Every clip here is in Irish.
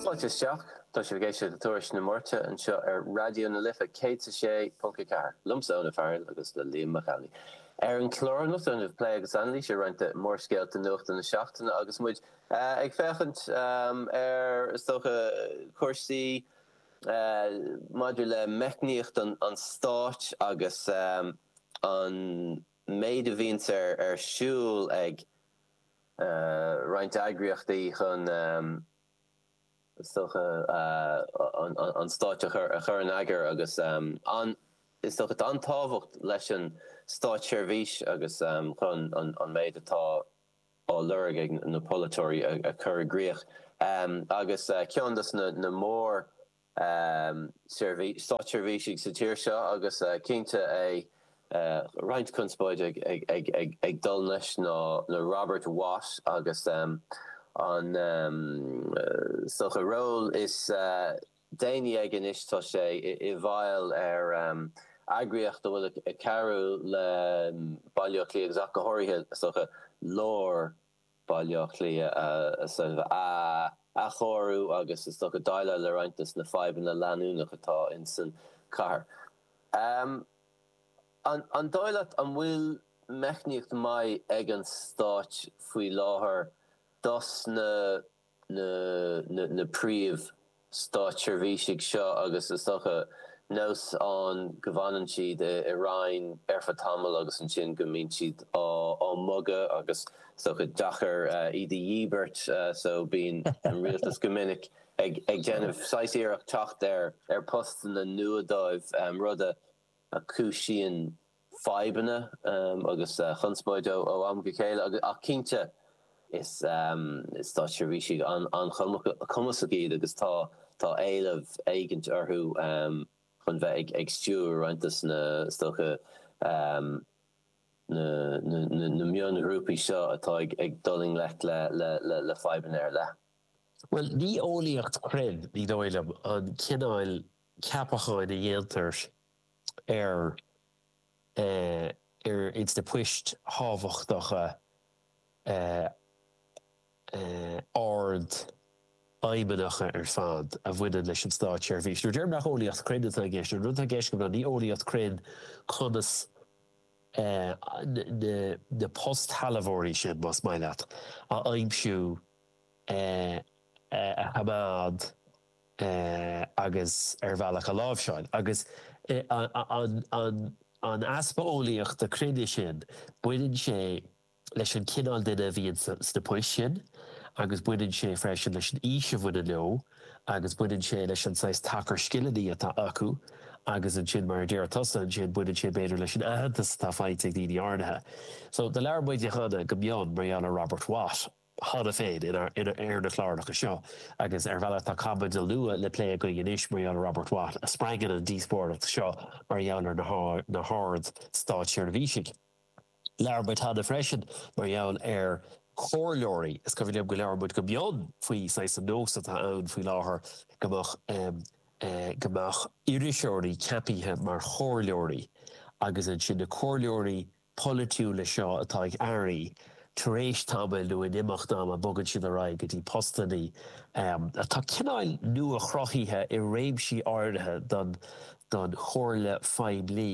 Fáilte isteach. Tá sibh ag éisteacht le Tuairisc na Máirte anseo ar Raidió na Life 106.4, liomsa, Eoin Ó Fearghail, agus le Liam Mac Amhlaigh. Ar an chlár anocht déanfaidh muid plé agus anailís ar roinnt de mhórscéalta nuachta na seachtaine agus muid ag féachaint ar, is dócha, cúrsaí maidir le meicníocht an stáit agus an méid a bhíonns ar siúl ag. roinnt eagraíochtaí chun sochaí an stáit a chur in eagar agus is dócha an-tábhacht leis an státseirbhís agus chun an méid atá á lorg ag na polaiteoirí a chur i gcrích agus ceann de na mór státseirbhísigh sa tír seo agus cinnte le roinnt conspóide ag dul leis ná Robert Watt agus an is dócha ról is déanaí aige anois tá sé i bhfeighil ar eagraíocht a bhfuil ag cabhrú le Baile Átha Cliath agus ach go háirithe is dócha lár Baile Átha Cliath a athchóiriú agus is dócha déileáil le roinnt de na fadhbanna leanúnach atá insan chathair. An dóigh leat an bhfuil meicníocht maith ag an stát faoi láthair dos na. na príomh stáitseirbhísigh seo agus is dócha nós ann go bhfanann siad i Roinn ar feadh tamaill agus ansin go mbíonn siad á mbogadh agus is dócha deacair iad a dhíbirt so bíonn an Rialtas go minic ag déanamh saghas iarracht teacht ar phostanna nua dóibh rud a chúisíonn fadhbanna agus conspóid ó am go chéile ach cinnte is státseirbhísigh an-chumasach iad agus tá éileamh éigint orthu chun bheith ag stiúradh roinnt de na is dócha na mionghrúpaí seo atá ag dul i ngleic le fadhbanna ar leith. Bhuel, ní eolaíocht cruinn, ní dóigh liom, an cineál ceapacháin a dhéantar ar ins na poist thábhachtacha ardfheidhmeannacha ar fad a bhaineann leis an Státseirbhís. Nuair a deirim nach eolaíocht cruinn atá i gceist, an rud atá i gceist go minic ná ní eolaíocht cruinn conas na postshealbhóirí sin, más maith leat, a aimsiú, a choimeád, agus ar bhealach a láimhseáil. Agus an easpa eolaíochta cruinne sin, baineann sé leis an chineál duine a bhíonn sna poist sin agus baineann sé freisin leis an aois a bhaineann leo agus baineann sé leis an saghas tacar scileanna atá acu agus ansin, mar a deir tusa, ansin baineann sé b'fhéidir leis an aitheantas atá faighte ag daoine áirithe. So, do labhair muide cheana go mion mar gheall ar Robert Watt. cheana féin ar na cláracha seo agus ar bhealach tá caibidil nua le plé againn anois mar gheall ar Robert Watt a spreagann an díospóireacht seo mar gheall ar na hArd Státseirbhísigh. Labhair muid cheana freisin mar gheall ar chomhairleoirí. Is cuimhin liom go labhair muid go mion faoi saghas an nós atá ann faoi láthair go mbeadh go mbeadh iriseoirí ceapaithe mar chomhairleoirí agus ansin na comhairleoirí polaitiúla seo atá ag airí, tar éis tamaill nó in imeacht ama bogann siad ar aghaidh go dtí postannaí atá cineáil nua-chruthaithe i réimsí áirithe don don chomhairle phoiblí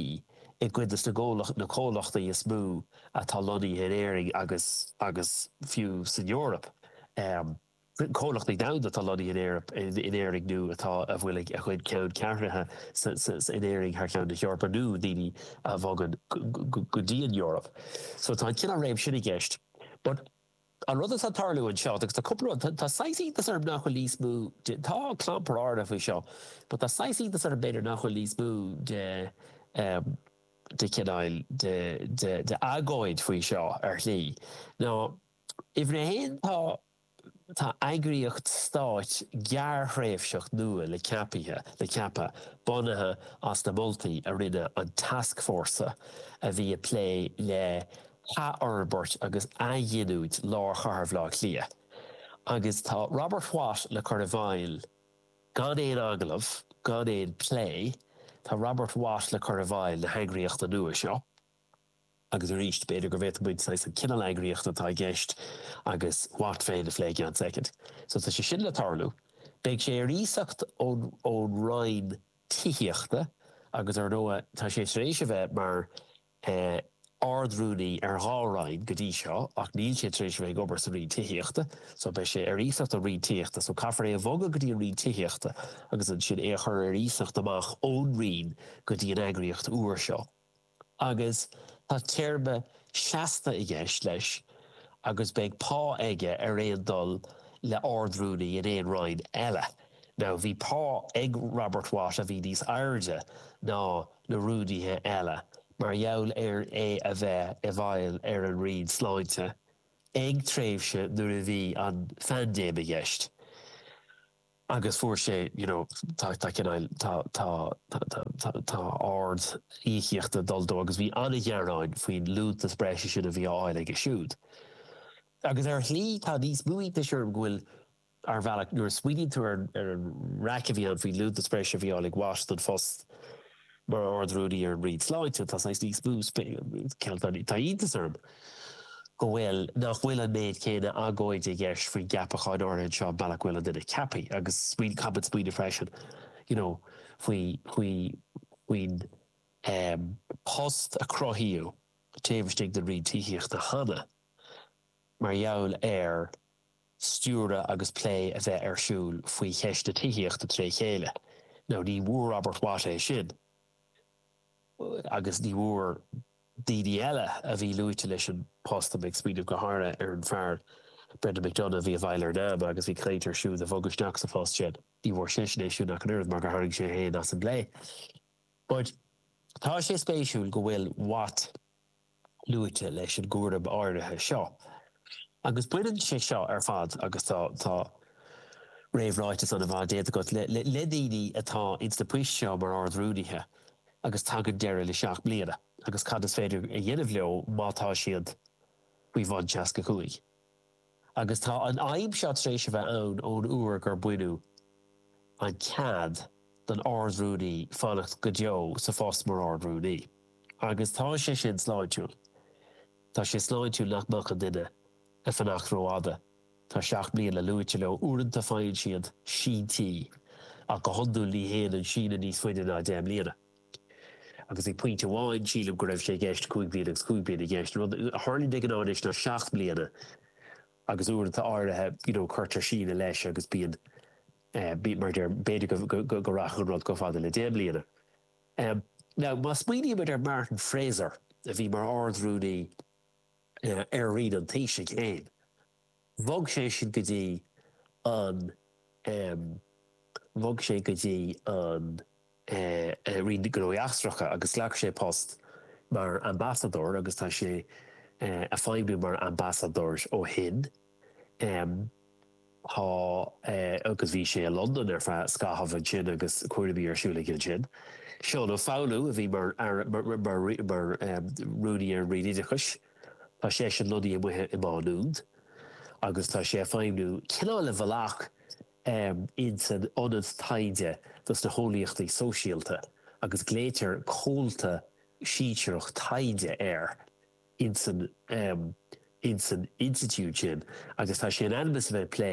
i gcuid des na gcomhlacht na comhlachtaí is mó atá lonnaithe in Éirinn agus agus fiú san Eoraip. comhlachtaí domhanda atá lonnaithe in Éirinn, in Éirinn nó atá, a bhfuil a gcuid ceanncheathrúna in Éirinn thar cheann na hEorpa nó daoine a bhogann go dtí an Eoraip. So tá an cineál réim sin i gceist. But an rud atá ag tarlú anseo, agus tá cúpla rud, tá saghas iontas orm nach bhfuil níos mó de, tá clampar áirithe faoi seo, but tá saghas iontas orm b'fhéidir nach bhfuil níos mó de, de chineál, de, de, de agóid faoi seo ar shlí. Now. Uimhir a haon, tá tá eagraíocht stáit gearrthréimhseach nua le ceapaithe le ceapadh, bunaithe as na moltaí a rinne an tascfhórsa a bhí ag plé le hathfhorbairt agus athghiniúint lár chathair Bhaile Átha Cliath agus tá Robert Watt le cur i bhfeighil gan aon agallamh, gan aon plé, tá Robert Watt le cur i bhfeighil na heagraíochta nua seo. Agus arís, b'fhéidir go bhféadfadh muid saghas an cineál eagraíochta atá i gceist agus Watt féin a phlé i gceann soicind. So tá sé sin le tarlú. Beidh sé ar iasacht ón Roinn Tithíochta agus ar ndóigh tá sé tar éis a bheith mar eh Ard-Rúnaí ar dhá Roinn go dtí seo ach níl sé tar éis a bheith ag obair sa Roinn Tithíochta so beidh sé ar iasacht ón Roinn Tithíochta so caithfear é a bhogadh go dtí an Roinn Tithíochta agus ansin é a chur ar iasacht amach ón Roinn go dtí an eagraíocht nua seo. agus tá téarma seasta i gceist leis agus beidh pá aige ar aon dul le Ard-Rúnaí in aon Roinn eile. Now bhí pá ag Robert Watt a bhí níos airde ná na Rúnaithe eile mar gheall ar é a bheith i bhfeighil ar an Roinn Sláinte ag tréimhse nuair a bhí an phaindéim i gceist. agus fuair sé you know tá tá cineáil tá tá tá tá ardíocaíocht ag dul dó agus bhí an-ghearáin faoin liúntas breise sin a bhí á fháil aige siúd agus ar shlí tá níos mó iontais orm go bhfuil ar bhealach nuair a smaoiníonn tú ar an ar an raic a bhí ann faoin liúntas breise a bhí á fháil ag Watt don phost Mar Ard-Rúnaí ar an Roinn Sláinte, tá saghas níos mó cineál tá iontas orm go bhfuil, nach bhfuil an méid céanna agóide i gceist faoin gceapachán áirithe anseo mar gheall go bhfuil an duine á cheapadh agus smaoin, caithfimid smaoineamh freisin, you know, faoi, faoi, faoin eh, post a cruthaíodh taobh istigh den Roinn Tithíochta cheana mar gheall ar stiúradh agus plé a bheith ar siúl faoi cheist na tithíochta tré chéile. Now ní bhfuair Robert Watt é sin agus ní bhfuair daoine eile a bhí luaite leis an post, tá mé ag smaoineamh go háirithe ar an fear Brendan McDonagh a bhí i bhfeighil ar Nama agus bhí caint ar é siúd a bhogadh isteach sa phost sin, ní bhfuair seisean é sin ach an oiread mar gur tharraing sé é féin as an bplé. But tá sé spéisiúil go bhfuil Watt luaite leis an gcúram áirithe seo agus baineann sé seo ar fad agus tá tá réamhráiteas an-mhaith déanta agat le le daoine atá ins na poist seo mar Ard-Rúnaithe agus tagann deireadh le seacht mbliana agus cad is féidir a dhéanamh leo má tá siad faoi bhun seasca cúig. agus tá an fhadhb seo tar éis a bheith ann ón uair gur baineadh an cead don Ard-Rúnaí fanacht go deo sa phost mar Ard-Rúnaí. Agus tá sé sin sláintiúil. Tá sé sláintiúil nach mbeadh an duine ag fanacht rófhada. Tá seacht mbliana luaite leo. Uaireanta faigheann siad síntí, ach go hiondúil ní théann an síneadh níos faide ná deich mbliana. agus ag pointe amháin sílim go raibh sé i gceist cúig bliana agus cúig bliana i gceist. An rud a tharlaíonn de ghnáth anois ná seacht mbliana agus uaireanta áirithe you know cuirtear síneadh leis agus bíonn eh mar a déarfá b'fhéidir go go rachadh an rud chomh fada le deich mbliana. Em now má smaoinímid ar Martin Fraser a bhí mar ard-rúnaí eh ar roinn an Taoisigh féin, bhog sé sin go dtí an, em, bhog sé go dtí an, eh, eh, roinn gnóthaí eachtracha agus ghlac sé post mar ambasadóir agus tá sé, eh, a' feidhmiú mar ambasadóir ó shin. Em, tá, eh, agus bhí sé i Londain ar feadh scaithimh ansin agus cúraimí ar siúl aige ansin. Seán Ó Foghlú a bhí mar Aire, mar, mar, mar, mar, em, Rúnaí ar an Roinn Oideachais. Tá seisean lonnaithe amuigh i Má Nuad agus tá sé ag feidhmniú cineál i bhfalach in san ionad taighde do na heolaíochtaí sóisialta agus glaoitear comhalta sinsearach taighde air in san in san institiúid sin agus tá sé in ainm is a bheith ag plé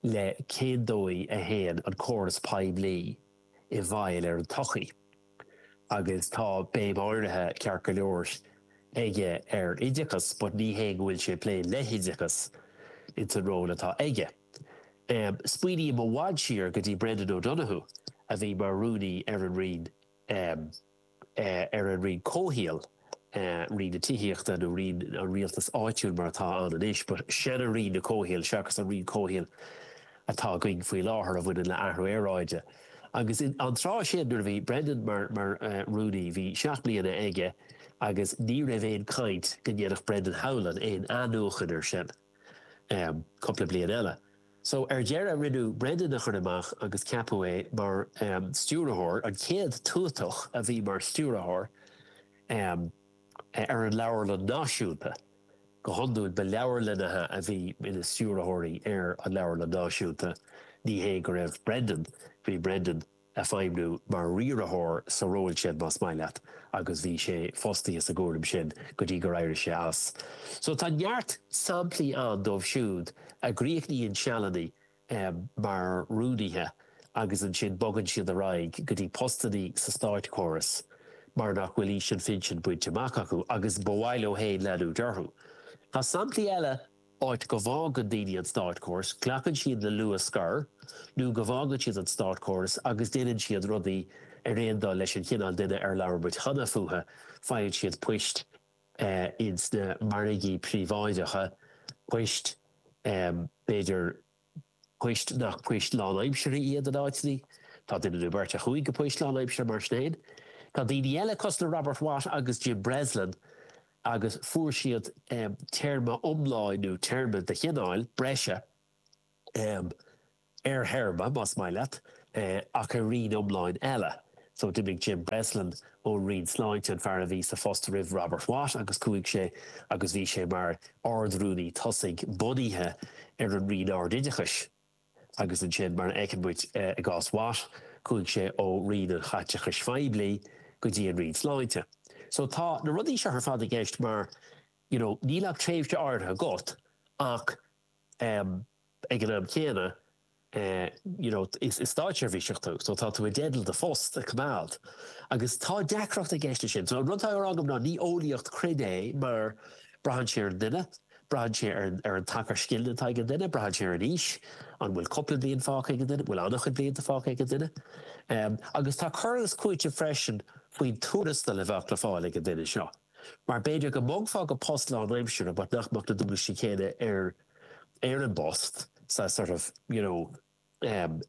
le cén dóigh a théann an córas poiblí i bhfeidhm ar an tsochaí agus tá béim áirithe, ceart go leor, aige ar oideachas but ní hé go bhfuil sé ag plé le hoideachas ins an ról atá aige. Smaoiním i bhfad siar go dtí Brendan O'Donoghue a bhí mar rúnaí ar an Roinn. ar an roinn comhshaoil, roinn na tithíochta nó roinn an rialtais áitiúil mar atá ann anois, but sean-roinn an chomhshaoil seachas an roinn comhshaoil atá againn faoi láthair a bhaineann le athrú aeráide. Agus an tráth sin nuair a bhí Brendan mar mar rúnaí bhí seacht mbliana aige agus ní raibh aon caint go ndéanfadh Brendan Howlin aon athnuachan ar sin. cúpla bliain eile. So ar deireadh rinneadh Brendan a chur amach agus ceapadh é mar stiúrthóir, an chéad tuatach a bhí mar stiúrthóir ar an leabharlann náisiúnta. Go hiondúil ba leabharlannaithe a bhí ina stiúrthóirí ar an leabharlann náisiúnta, ní hé go raibh Brendan, bhí Brendan, ag feidhmniú mar riaraitheoir sa ról sin más maith leat agus bhí sé fostaithe sa gcúram sin go dtí gur éirigh sé as. So tá neart samplaí ann dóibh siúd a gcríochnaíonn sealanna mar rúnaithe agus ansin bogann siad ar aghaidh go dtí postannaí sa státchóras mar nach bhfuil aois an phinsin bainte amach acu agus ba mhaith leo féin leanúint orthu. Tá samplaí eile. áit go bhfágann daoine an státchóras, glacann siad le luath scor nó go bhfágann siad an státchóras agus déanann siad rudaí ar aon dul leis an chineál duine ar labhair muid cheana fúthu, faigheann siad poist in sna margaí príobháideacha, poist b'fhéidir. poist nach poist lánaimseartha iad in áiteanna, tá duine nó beirt a chuaigh go poist lánaimseartha mar sin féin. Tá daoine eile, cosúil le Robert Watt agus Jim Breslin, agus fuair siad téarma iomlán nó téarma de chineál breise ar théarma, más maith leat, ach ar roinn iomlán eile. So d'imigh Jim Breslin ón roinn sláinte, an fear a bhí sa phost roimh Robert Watt agus chuaigh sé agus bhí sé mar ard-rúnaí tosaigh bunaithe ar an roinn ard-oideachais agus ansin mar a fheiceann muid i gcás Watt chuaigh sé ó roinn an chaiteachais phoiblí go dtí an roinn sláinte. So tá na rudaí seo ar fad i gceist mar you know níl ach tréimhse áirithe agat ach ag an am céanna you know is státseirbhíseach tú so tá tú i dteideal do phost a coimeád agus tá deacracht i gceist leis sin. So an rud atá á rá agam ná ní eolaíocht cruinn é mar braitheann sé ar an duine, braitheann sé ar an tacar scileanna atá ag an duine, braitheann sé ar an aois, an bhfuil cúpla bliain fágtha ag an duine, an bhfuil an-chuid blianta fágtha ag an duine. Agus tá cur agus cúiteamh freisin faoin tuarastal a bheadh le fáil ag an duine seo. Mar b'fhéidir go mbogfá go dtí post lánaimseartha but nach mbeadh na dualgaisí céanna ar ar an bpost sa sort of you know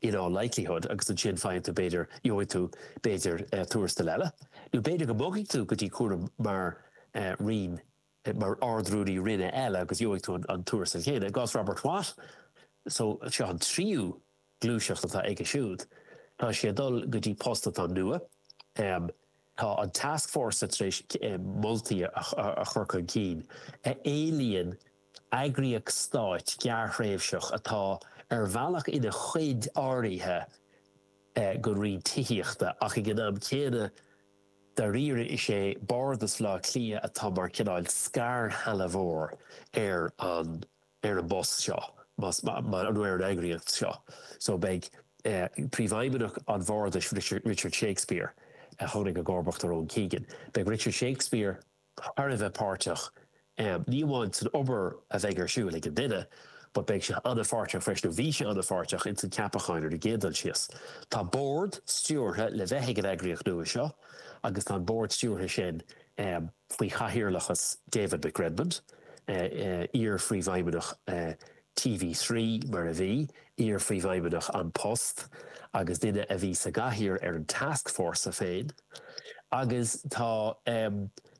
in all likelihood agus ansin faigheann tú b'fhéidir gheobhaidh tú b'fhéidir eh tuarastal eile nó b'fhéidir go mbogfaidh tú go dtí cúram mar eh roinn mar ardrúnaí roinne eile agus gheobhaidh tú an tuarastal chéanna. I gcás Robert Watt so seo an tríú gluaiseacht atá aige siúd. Tá sé ag dul go dtí post atá nua. Tá an task force tar éis moltaí a chur chun cinn a éilíonn eagraíocht stáit gearrthréimhseach atá ar bhealach ina chuid áirithe den roinn tithíochta ach ag an am céanna dáiríre is é Bardas Bhleá Cliath atá mar cineál scairshealbhóir ar an ar an bpost seo nó ar an eagraíocht seo so beidh Príomhfheidhmeannach an Bhardais, Richard Shakespeare, a tháinig i gcomharbacht ar Owen Keegan, beidh Richard Shakespeare thar a bheith páirteach ní amháin san obair a bheidh ar siúl ag an duine but beidh sé an-pháirteach freisin nó bhí sé an-pháirteach ins an ceapacháin ar an gcéad dul síos. Tá bord stiúrtha le bheith ag an eagraíocht nua seo agus tá an bord stiúrtha sin. faoi chathaoirleachas David McRedmond, iar-phríomhfheidhmeannach TV Three, mar a bhí, iar-phríomhfheidhmeannach An Post agus duine a bhí sa gcathaoir ar an tascfhórsa féin. Agus tá,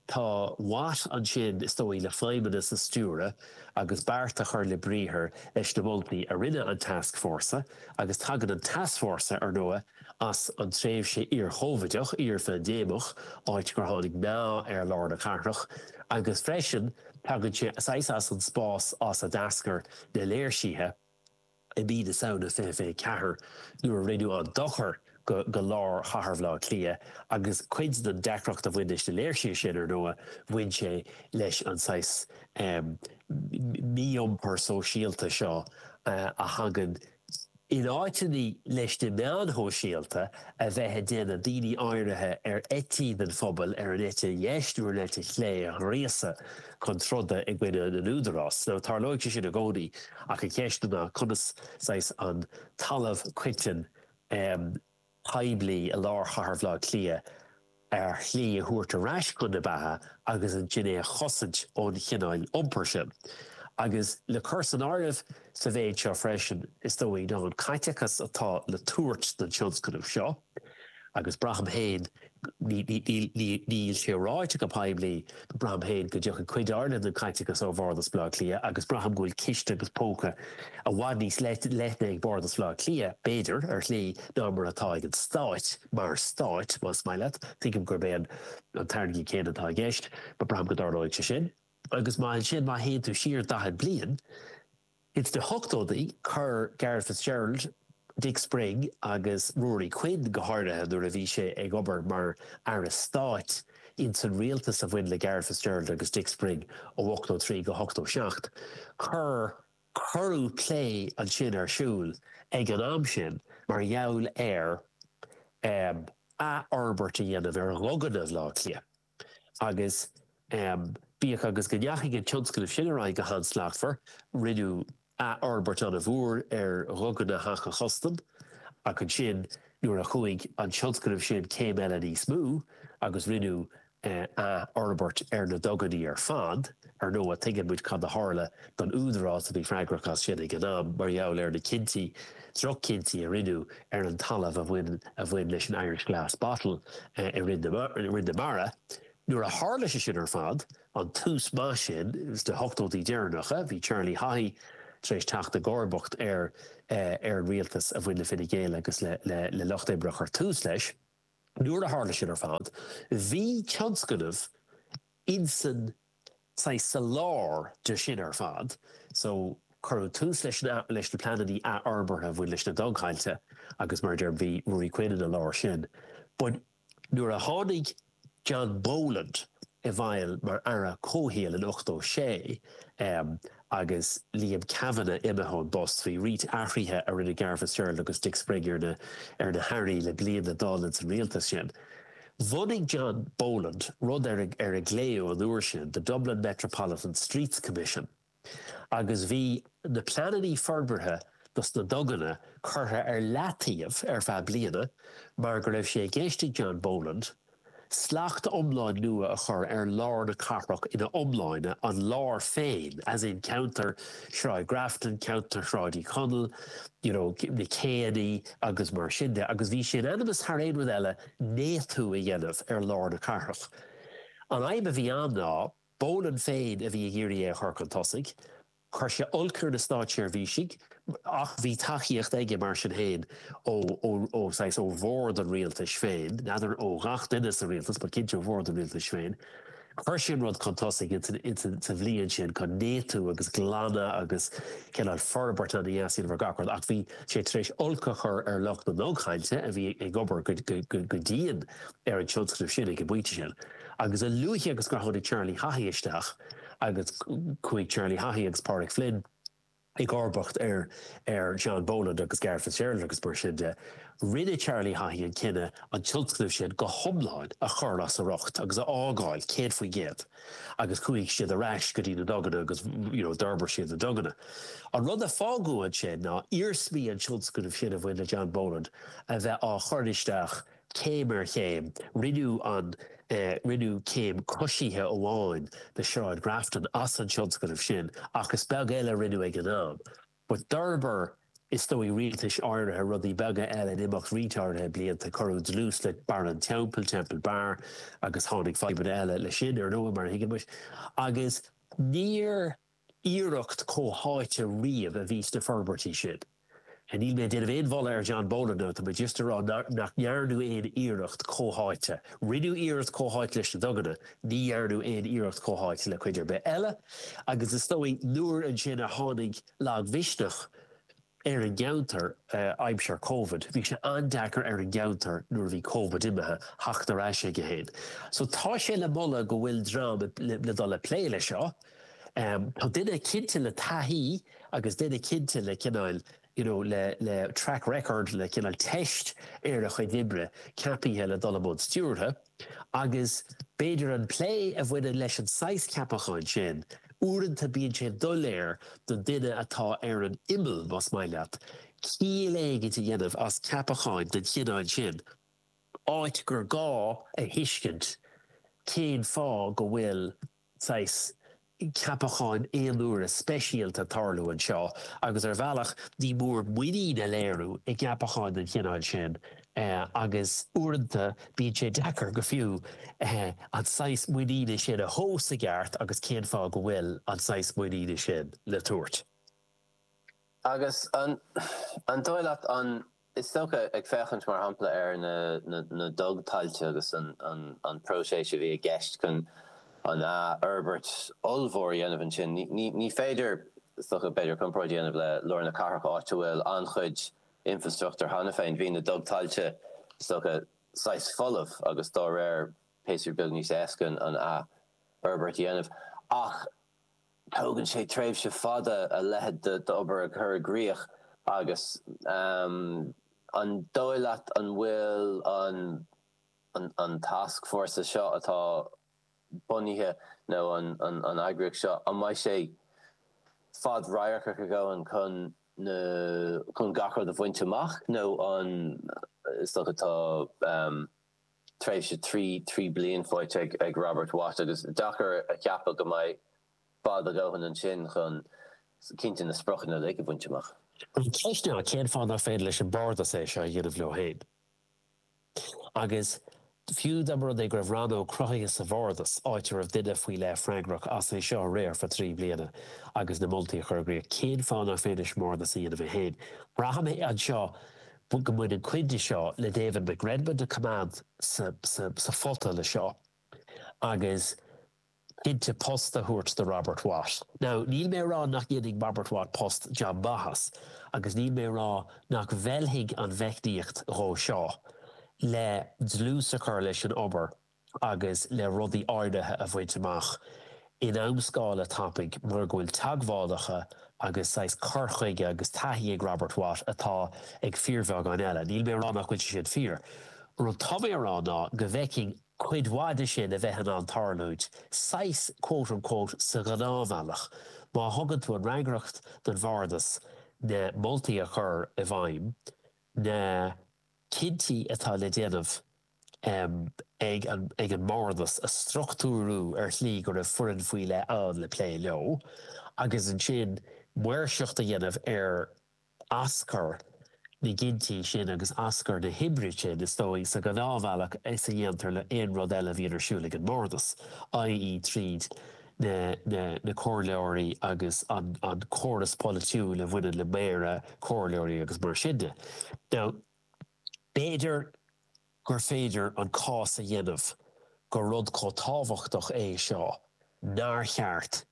tá Watt ansin is dóigh le feidhmeannas a stiúradh agus beart a chur le briathar leis na moltaí a rinne an tascfhórsa agus tagann an tascfhórsa, ar ndóigh, as an tréimhse iar-Chóvaideach, iar-phaindéimeach, áit gur tháinig meath ar lár na cathrach, agus freisin tagann sé saghas as an spás as a d'eascair na léirsithe i mí na Samhna 2024 nuair a rinneadh an dochar go lár chathair Bhleá Cliath agus cuid den deacracht a bhain leis na léirsithe sin ar ndóigh bhain sé leis an saghas mí-iompar sóisialta seo a thagann In áiteanna leis na meáin shóisialta a bheith ag déanamh daoine áirithe ar eití den phobail ar an eite dheis nó ar an eite chlé a ghríosadh chun troda i gcoinne na n-údarás, so, tarlóidh sé sin i gcónaí ach an cheist ná conas, saghas, an talamh coiteann a. poiblí i lár chathair Bhaile Átha Cliath ar shlí, a thabhairt ar ais chun na beatha agus ansin é a chosaint ón chineál iompair sin. Agus le cur san áireamh sa mhéid seo freisin, is dóigh, ná an caiteachas atá le tabhairt don tionscnamh seo, agus braithim féin Níl sé ráite go poiblí. Braithim féin go dtiocfaidh cuid mhór den chaiteachas ó Bhardas Bhaile Átha Cliath agus braithim go bhfuil ciste agus póca i bhfad níos leithne ag Bardas Bhaile Átha Cliath, b'fhéidir, ar shlí, ná mar atá ag an stáit, mar stáit, más maith leat. Tuigim gurb é an tairne céanna atá i gceist, but braithim go dtarlóidh sé sin. Agus má ansin, má théann tú siar daichead bliain, Ins na hochtóidí cuireadh Garret Fitzgerald, Dick Spring agus Ruairí Quinn, go háirithe nuair a bhí sé ag obair mar aire stáit ins an rialtas a bhain le Garret Fitzgerald agus Dick Spring ó 83 go 87. Cuir curadh plé ansin ar siúl ag an am sin mar gheall ar athfhorbairt a dhéanamh ar dhuganna Bhaile Átha Cliath. Agus bíodh agus go ndeachaigh an tionscnamh sin ar aghaidh go han-slachtmhar, rinneadh athfhorbairt an-mhór ar Dhuganna Theach an Chustaim ach ansin nuair a chuaigh an tionscnamh sin céim eile níos mó agus rinneadh athfhorbairt ar na duganna ar fad, Ar ndóigh, tuigeann muid cad a tharla don údarás a bhí freagrach as sin ag an am mar gheall ar na cinntí, droch-chinntí a rinneadh ar an talamh a bhain a bhain leis an Irish Glass Bottle i Rinn na Mara. Nuair a tharla sé sin ar fad, an tús maith sin do na hochtóidí deireanacha, bhí Charlie Haughey tar éis teacht i gcomharbacht ar ar an rialtas a bhain le Fine Gael agus le Lucht Oibre a chuir tús leis. Nuair a tharla sin ar fad, bhí tionscnamh. Ins an saghas sa lár de sin ar fad, so cuireadh tús leis na leis na pleanannaí athfhorbartha a bhain leis na dugthailte agus mar a deirim bhí Ruairí Quinn ina lár sin but nuair a tháinig John Boland i bhfeighil mar Aire Comhshaoil in ochtó sé, em, Agus Liam Cavanagh imithe ón bpost, bhí roinnt athruithe a rinne Garret Fitzgerald agus Dick Spring ar na ar na hAirí le bliain le dul ins an rialtas sin. Bhunaigh John Boland rud ar ar glaodh an uair sin The Dublin Metropolitan Streets Commission agus bhí na pleananna forbartha dos na duganna curtha ar leataobh ar feadh bliana mar go raibh sé i gceist ag John Boland Slacht iomlán nua a chur ar lár na cathrach ina iomláine, an lár féin, as in, ceantar Shráid Grafton, ceantar Shráid Uí Chonaill, you know, na céannaí agus mar sin de. Agus bhí sé in ainm is thar aon rud eile néatú a dhéanamh ar lár na cathrach. An fhadhb a bhí ann ná Boland féin a bhí ag iarraidh é a chur chun tosaigh Chuir sé olc ar na státseirbhísigh ach bhí tacaíocht aige mar sin féin ó bhord an rialtais féin, n'fheadar ó ghach duine sa rialtas but cinnte ó bhord an rialtais féin. Chuir sé an rud chun tosaigh insan sa bhliain sin chun néatú agus glanadh agus cineál forbairt a dhéanamh ar gach rud ach bhí sé tar éis olc a chur ar lucht na ndugthailte a bhí ag obair go dian ar an tionscnamh sin ag an bpointe sin agus a luaithe agus gur tháinig Charlie Haughey isteach agus chuaigh Charlie Haughey agus Pádraig Flynn i gcomharbacht ar ar John Boland agus Garret Fitzgerald agus mar sin de. Rinne Charlie Haughey an cinneadh an tionscnamh sin go hiomlán a chur as a riocht agus a fhágáil 100% agus chuaigh siad ar ais go dtí na duganna agus you know d'fhorbair siad na duganna. An rud a fágadh ansin ná iarsmaí an tionscnamh sin a bhain le John Boland a bheith á chur isteach Céim ar chéim, rinneadh an rinneadh scéim coisithe amháin de Shráid Grafton as an tionscnamh sin ach is beag eile a rinneadh ag an am. But d'fhorbair is dóigh rialtais áirithe rudaí beaga eile in imeacht roinnt áirithe blianta, cuireadh dlús le Barr an Teampaill, Temple Bar, agus tháinig fadhbanna eile leis sin, ar ndóigh, mar a thuigeann muid. Agus níor iarracht comhtháite riamh a bhí sna forbairtí sin. Níl mé ag déanamh an-mholadh ar John Boland tá mé just ag rá nach ndearnadh aon iarracht comhtháite. Rinneadh iarracht comhtháite leis na duganna, ní dhearnadh aon iarracht comhtháite le cuid ar bith eile agus is dóigh nuair ansin a tháinig lagmhisneach, ar an gceantar aimsir Covid. Bhí sé an-deacair ar an gceantar nuair a bhí Covid imithe, theacht ar ais aige féin. So tá sé le moladh go bhfuil dream le dul ag plé leis seo. Tá duine cinnte le taithí agus duine cinnte le cineál you know le le track record le cineál teist ar a chuid oibre ceapaithe le dul i mbun stiúrtha. agus b'fhéidir an plé a bhaineann leis an saghas ceapacháin sin, uaireanta bíonn sé doiléir don duine atá ar an imeall, más maith leat, ciall éigin a dhéanamh as ceapacháin den chineál sin, áit gur gá a thuiscint cén fáth go bhfuil. saghas ceapacháin aonuaire speisialta ag tarlú anseo agus ar bhealach ní mór muinín a léiriú i gceapacháin den chineál sin agus uaireanta bíonn sé deacair go fiú an saghas muiníne sin a thomhas i gceart agus cén fáth go bhfuil an saghas muiníne sin le tabhairt agus an dóigh leat an. Is dócha, ag féachaint mar shampla ar na dug-tailte agus an próiseas a bhí i gceist chun an athfhorbairt ollmhór a dhéanamh ansin, ní féidir, is dócha, b'fhéidir, comparáid a dhéanamh le lár na cathrach áit a bhfuil an-chuid infrastruchtúir cheana féin. Bhí na dug-tailte, is dócha, saghas folamh agus dá réir bhí sé beag níos éasca an athfhorbairt a dhéanamh. Ach. Tógann sé tréimhse fada a leithéid d'obair a chur i gcrích agus an dóigh leat, an bhfuil an tascfhórsa seo atá bunaithe nó an eagraíocht seo, an mbeidh sé fad-radharcach a dhóthain chun gach rud a bhaint amach nó an is dócha tá tréimhse trí trí bliain faighte ag Robert Watt agus deacair a cheapadh go mbeidh fada a dhóthain ansin chun cinnte na spriocanna uilig a bhaint amach. An cheist ná cén fáth nach féidir leis an mBardas é seo a dhéanamh leo féin? Agus fiú dá mba rud é go raibh rannóg cruthaithe sa Bhardas, áit a raibh duine faoi leith freagrach as é seo a riar for trí bliana agus na moltaí a chur i gcrích, cén fáth nach féidir leis an mBardas a dhéanamh é féin? Braithim anseo go mbaineann cuid de seo le David McRedmond a choimeád sásta le seo agus cinnte post a thabhairt do Robert Watt. Now níl mé a rá nach ndéanfaidh Robert Watt post jab maith as agus níl mé a rá nach bhfeilfidh an mheicníocht nua seo le dlús a chur leis an obair agus le rudaí áirithe a bhaint amach in amscála tapaidh mar go bhfuil teagmhálacha agus saghas cur chuige agus taithí ag Robert Watt atá ag fíorbheagán eile. Níl mé a rá nach bhfuil sé sin fíor. Rud tá mé a rá ná go bhfeicfinn cuid mhaith de sin a bheith in ann tarlúint saghas quote unquote sa ghnáthbhealach má thugann tú an fhreagracht don Bhardas na moltaí a chur i bhfeidhm, na. cinntí atá le déanamh ag an mBardas a struchtúrú ar shlí go raibh foireann faoi leith ann le plé leo agus ansin maoirseacht a dhéanamh ar aschur na gcinntí sin agus aschur na hoibre sin is dóigh sa ghnáthbhealach is a dhéantar le haon rud eile a bhíonn ar siúl ag an mBardas, i.e. tríd. na comhairleoirí agus an córas polaitiúil a bhaineann le méara, comhairleoirí agus mar sin de. Now, b'fhéidir gur féidir an cás a dhéanamh gur rud chomh tábhachtach é seo nár cheart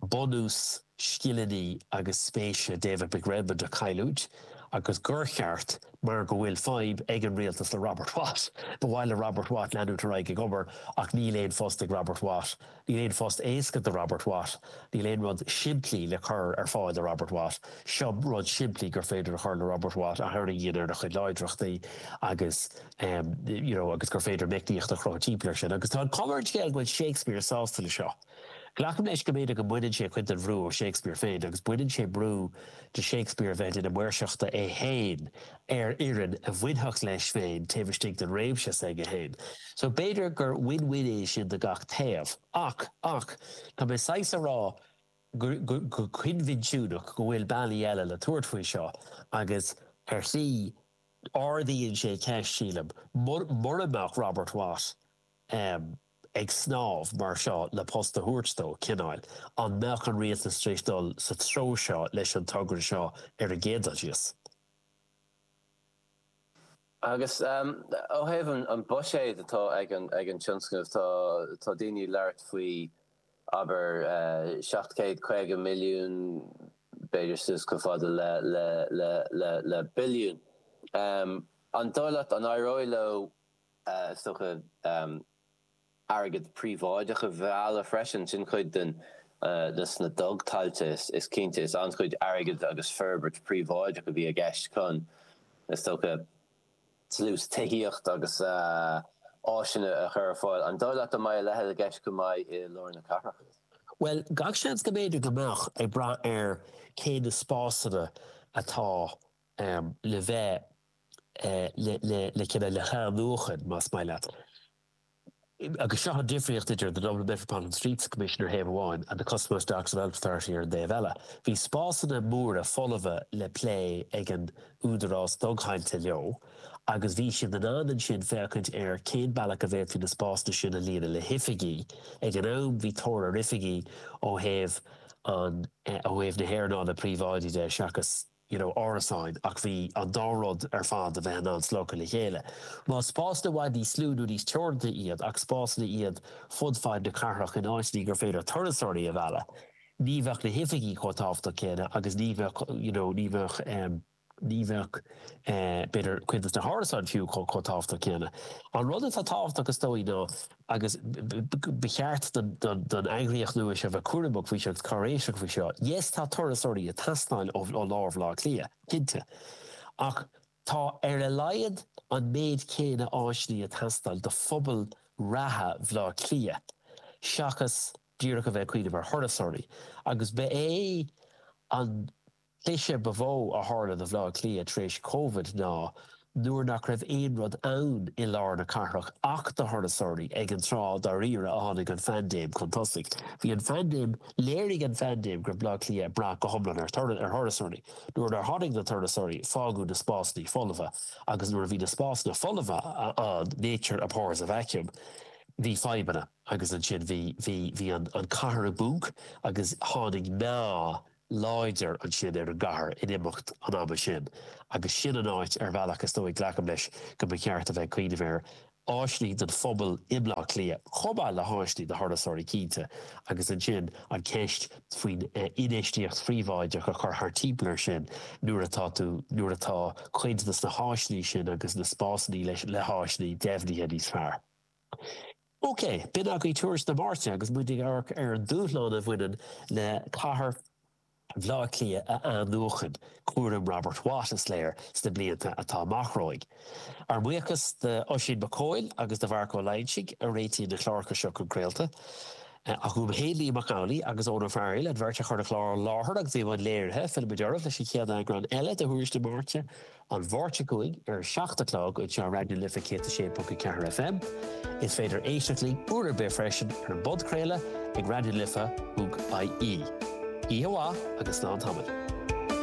bunús scileanna agus spéise David McRedmond a chailliúint agus gur cheart, mar go bhfuil fadhb ag an rialtas le Robert Watt. Ba mhaith le Robert Watt leanúint ar aghaidh ag obair ach níl aon phost ag Robert Watt. Níl aon phost éasca do Robert Watt. Níl aon rud simplí le cur ar fáil do Robert Watt. Seo rud simplí gur féidir a chur le Robert Watt a tharraingíonn ar a chuid láidreachtaí agus you know agus gur féidir meicníocht a chruthú timpeall air sin agus tá an comhairle, is léir go bhfuil Shakespeare sásta leis seo. Glacaim leis go mb'fhéidir go mbaineann sé cuid den bhrú ó Shakespeare féin agus baineann sé brú de Shakespeare a bheith i mbun maoirseachta é féin ar fhoireann a bhainfeadh leis féin taobh istigh den réimse s'aige féin. So b'fhéidir gur win-win é sin do gach taobh. Ach, ach, tá mé saghas a rá go, go, go coinbhinsiúnach go bhfuil bealaí eile le tabhairt faoi seo agus ar shlí ardaíonn sé ceist, sílim, murach Robert Watt, ag snámh mar seo le post a thabhairt dó, cineáil. An mbeadh an rialtas tar éis dul sa treo seo leis an togra seo ar an gcéad dul síos? Agus ó thaobh an buiséid atá ag an tionscnamh, tá daoine ag labhairt faoi, abair, seacht céad caoga milliún, b'fhéidir suas chomh fada le billiún. An dóigh leat an éireoidh leo Is dócha airgead príobháideach a mhealladh freisin. Sin cuid den, de na dugthailte is cinnte. is an-chuid airgead agus forbairt príobháideach a bhí i gceist chun, is dócha, dlús tithíocht agus áiseanna a chur ar fáil. An dóigh leat go mbeidh a leithéid i gceist chomh maith i lár na cathrach? Bhuel, gach seans go mb'fhéidir go mbeadh, ag brath ar cé na spásanna atá le bheith le le le cineál le hathnuachan más maith leat agus seo an difríocht idir The Dublin Metropolitan Streets Commission ar thaobh amháin and The Customs Docks Development Authority ar an dtaobh eile. Bhí spásanna móra folmha le plé ag an údarás dugthailte leo agus bhí siad in ann ansin féachaint ar cén bealach a bhféadfaí na spásanna sin a líonadh le hoifigí. Ag an am bhí tóir ar oifigí ó thaobh an ó thaobh na haearnála príobháidí de seachas you know árasáin ach bhí an dá rud ar fad, bhí siad in ann slogtha le chéile. Más spásanna i bhfad níos lú nó níos teoranta iad ach spásanna iad fud fad na cathrach in áiteanna gur féidir turasóirí a mhealladh ní bheadh na hoifigí chomh tábhachtach céanna agus ní bheadh you know ní bheadh em ní bheadh eh b'fhéidir cuid de na hárasáin fiú chomh tábhachtach céanna. An rud atá tábhachtach is dóigh ná agus ba cheart don eagraíocht nua seo a bheith cúramach faoi seo agus cáiréiseach faoi seo. Yes, tá turasóirí ag teastáil ó lár Bhaile Átha Cliath, cinnte, ach tá ar a laghad an méid céanna áiseanna ag teastáil do phobal reatha Bhaile Átha Cliath seachas díreach a bheith ag cuimhneamh ar thurasóirí agus ba é an cliseadh ba mhó a tharla do Bhaile Átha Cliath tar éis Covid ná nuair nach raibh aon rud ann i lár na cathrach ach do thurasóirí, ag an tráth dáiríre a tháinig an phaindéim chun tosaigh. Bhí an phaindéim, léirigh an phaindéim go raibh Baile Átha Cliath ag brath go hiomlán ar thurasóirí. Nuair nár tháinig na turasóirí, fágadh na spásanna folamha agus nuair a bhí na spásanna folamha ann, nature abhors a vacuum, bhí fadhbanna agus ansin bhí, bhí, bhí an cathair i bponc agus tháinig meath láidir ansin ar an gcathair in imeacht an ama sin agus sin an áit ar bhealach is dóigh, glacaim leis, go mba cheart a bheith ag cuimhneamh air. Áiseanna don phobal i mBleá Cliath chomh maith le háiseanna do thurasóirí cinnte agus ansin an cheist faoin infheistíocht phríobháideach a chur thart timpeall air sin nuair atá tú, nuair atá cuid dos na háiseanna sin agus na spásanna leis, le háiseanna deimhnithe níos fearr. OK, b'in agaibh tuairisc na Máirte agus muid ag amharc ar an dúshlán a bhaineann le cathair Bhaile Átha Cliath a athnuachan, cúram Robert Watt, is léir, sna blianta atá amach romhainn. Ár mbuíochas d'Oisín Mac Cóil agus do Mharc Ó Loingsigh a réitigh na cláracha seo chun craolta. Ach uaim féin, Liam Mac Amhlaigh agus Eoghan Ó Fearghail, an bheirt a chuir an clár i láthair agus bhí i mbun léirithe, fillfimid oraibh leis an chéad eagrán eile de Thuairisc na Máirte. an Mháirt seo chugainn ar a 7 a chlog anseo ar Raidió na Life 106.4 FM. Is féidir éisteacht linn uair ar bith freisin ar an bpodchraoladh ag raidionalife.ie. Oíche mhaith agus slán tamaill.